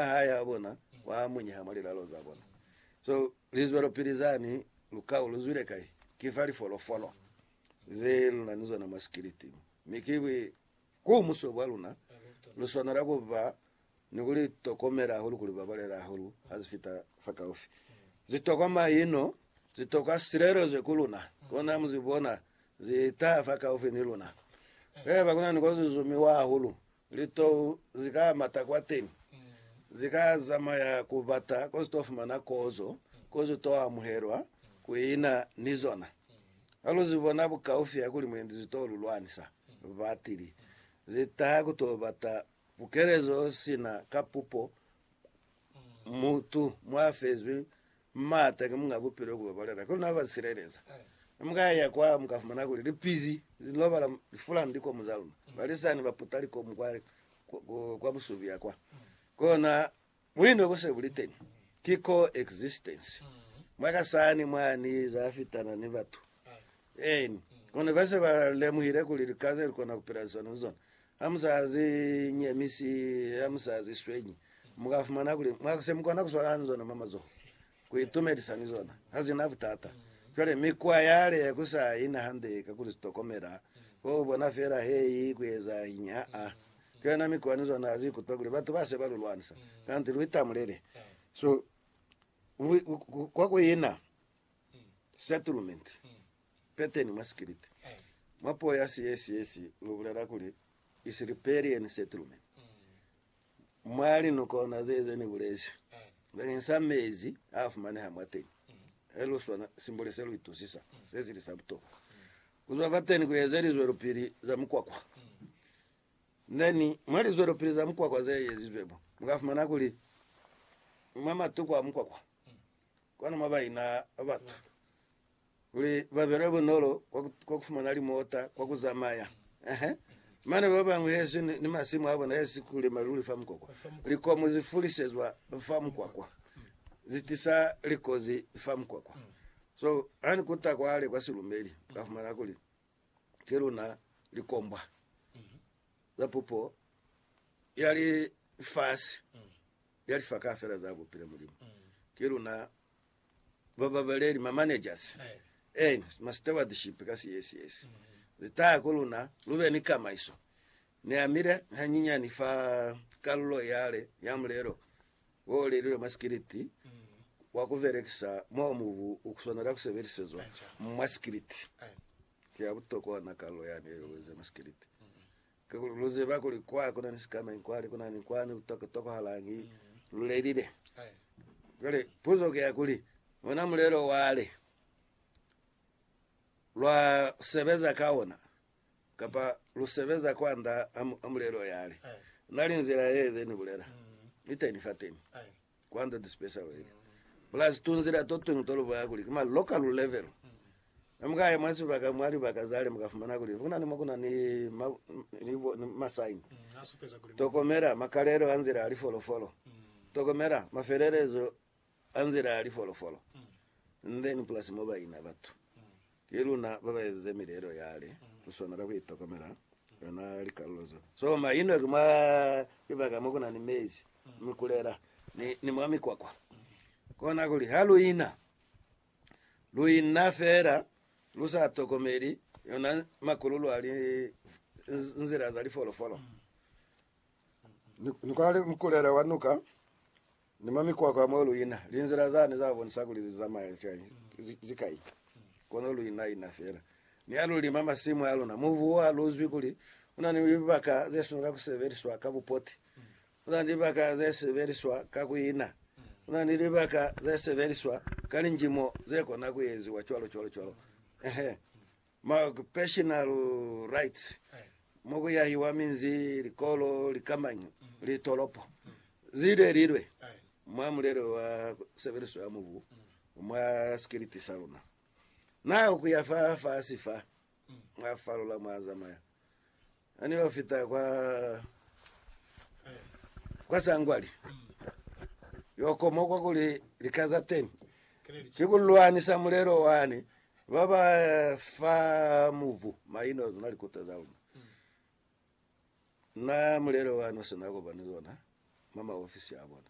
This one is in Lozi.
hae ha bona kwa munyeha mwa lilalo za bona. So, lizwelopili zani, lukau lu zwile kai? Ki fa lifolofolo ze lu na ni zona mwa sikiliti mo. Mi ki bwi ku muso bwa luna, lu swanela ku ba ni ku li tokomela hahulu, ku li babalela hahulu ha zi fita fakaufi. Zi tokwa maino, zi tokwa silelezo ku luna. Kona mu zi bona zi taha fakaufi ni luna. Haiba ku na ni ko zi zumiwa hahulu, Litou zi ka mata kwateni, zi ka zamaya ku bata ko zi to fumana kozo, ko zi to amuhelwa, ku ina ni zona. Ha lu zi bona bukaufi ya kuli mwendi zi to lu lwanisa, batili zi taha ku to bata bukelezo sina ka pupo, mutu mwa fezwi M'ata ki munga bupilo ku babalela, kono na ba sileleza. Ha mu ka ya kwa, mu ka fumana kuli lipizi li lobala lifulani likomu za luna. Balisani ba puta likomu kwa, kwa busubi ya kwa. Kona buino bu se bu li teni. Ki co-existence. Mwa ka sani mwani za fitana ni batu. Eeni. Kono ba se ba lemuhile kuli lika ze lu kona ku pila liswani ni zona. Ha mu sa zi nyemisi, ha mu sa zi swenyi, mu ka fumana kuli mwa se mu kona ku swalana ni zona mwa mazoho, ku itumelisa ni zona. Ha zi na butata. Cwale, mikwa yale ya ku sa yi na hande ka ku li tokomela, ko ku bona fela he i ku ezañi. Ha-a. Cwale na mikwa ni zona ha zi ikutwa kuli batu ba se ba lu lwanisa, kanti lu itamulele. So, lu, kwa ku ina settlement. Peteni mwa sikiliti, mwa puo ya Siyesiyesi lu bulela kuli Isilipelieni Settlement. Mwa linukona ze ze ni bulezi bakeng sa mezi a fumaneha mwateñi, he lu swana simboli se lu itusisa se sili sa butokwa. Ku zwa fateni ku eze lizwelopili za mukwakwa. Neni, mwa lizwelopili za mukwakwa ze ezizwe mo, mu ka fumana kuli mwa matuku a mukwakwa, Kono mwa baina ba batu kuli ba belwe bunolo kwa ku fumana limota kwa ku zamaya, ehe, mane ba bañwi hezi ni masimu a bona hezi ku lima luli fa mukwakwa. Likomu zi fulisezwa fa mukwakwa, zi tisa likozi fa mukwakwa. So, ha ni kuta kwale kwa silumeli, ka fumana kuli ki luna likombwa za pupo ya lifasi. ya lifa kaufela za kupila Mulimu. Ki luna bababaleli, ma managers, and ma stewardship ka CSS ze taya ku luna lu be ni kamaiso. Ni amile hanyinyani fa kalulo yale ya mulelo wo lelilwe mwa sikiliti wa ku belekisa mo mubu u swanela ku sebelisezwa mwa sikiliti. Ki ya butokwa na kalulo yani ye lweze mwa sikiliti. Kakuli lu ziba kuli kwa ku na ni sikamañi kwani, ku na ni kwani ku tokohalañi lu lelile. Cwale puzo ki ya kuli, ona mulelo wale lwa sebeza ka ona, kapa lu sebeza kwand'a mulelo yale? Na li nzila ye ze ni bulela iteni fateni. Kwando to special weli, plus tunzila totuñwi tolubwaya kuli ki ma local level. Ne mukaya mwa sibaka mwa libaka zale mukafumana kuli kunani mo kuna ni ma, ni, ni ma sign. Tokomela makalelo a nzila ya lifolofolo. Tokomela mafelelezo a nzila ya lifolofolo. And then plus mo baina batu. Ki luna ba ba ezize mileelo yale ku sona ka ku itokomela yona likalulo zo so ma ino ki mwa libaka mo ku na ni mezi, mikulela, ni, ni mwa mikwakwa. Kona kuli ha lu ina, lu ina feela lu sa tokomeli yona makululu a li, nzila za lifolofolo. Ni, ni kwa li mukulela wa nuka Ni mwa mikwakwa mo lu ina, linzila zani za bonisa kuli li zamaya cwañi? Ki kai? Kono lu ina-ina fela. Ni ha lu lima masimu a luna, mubu ha lu zwi kuli u na ni libaka ze swanela ku sebeliswa ka bupoti. Lu na ni libaka ze sebeliswa ka ku ina. Lu na ni libaka ze sebeliswa ka linjimo ze kona ku eziwa cwalo, cwalo, cwalo. Ehe. ma occupational rights, mo ku yahiwa minzi, likolo, likamanyo, litolopo, zile lilwe, mwa mulelo wa sebeliso ya mubu mwa sikiliti sa luna. Na ku ya fa fasi fa, mwa falola mwa zamaya. Ha ne ba fita kwa, kwa sangwali, yo koma kwa kuli lika za teni ki ku lwanisa mulelo wani ba ba fa muvu maino zona likuta za luna. Na mulelo wani o si na kopani zona mwa maofisi a bona.